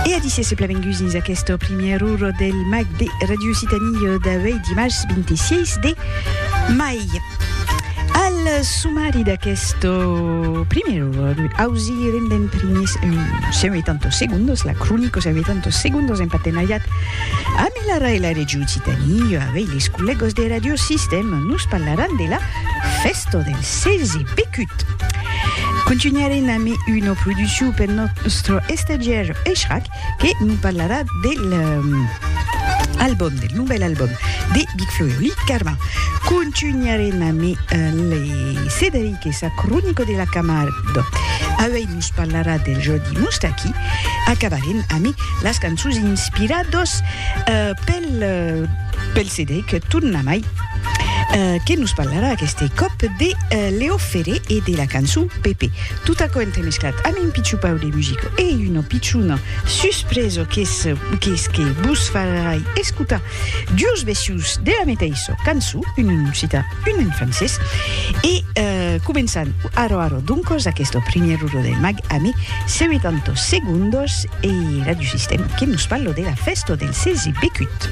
E a disse se plavenguts dins aquesta primièr ur del mag de Radio Occitanie d'avei dimars 26 de mai. Al sumari d'aquest primièr ur ausi rendem primis un seu e tantos segundos la cronica seu e tantos segundos en partenariat amb l'ARA e la Radio Occitanie avei les collègos de Radio Sistèma nos parlaran de la Festo del Selzi Pecut. Contunharem amb una produccion pel nòstre estagiaire Echrac que nos parlarà del album, del novèl album de Big Flo e Oli Carma. Contunharem amb le Cederic e sa cronica de la Camargue. Auei nos parlarà del Jordi Moustaki. Acabarem amb las cançons inspiradas pel Cederic, tornamai. Que nos parlarà aqueste còp de Leo Ferré e de la cançon Pepe. Tot aquò entremesclat amb un pichupau de musica e una pichona suspresa qu'es que vos farai escotar duos vecius de la meteissa cançon, un en occitan, un en francés. E començam ara ara doncas aquesta primièra ora del mag ame 70 segondas e Radiosistèma que nos parla de la fèsta del 16 becut.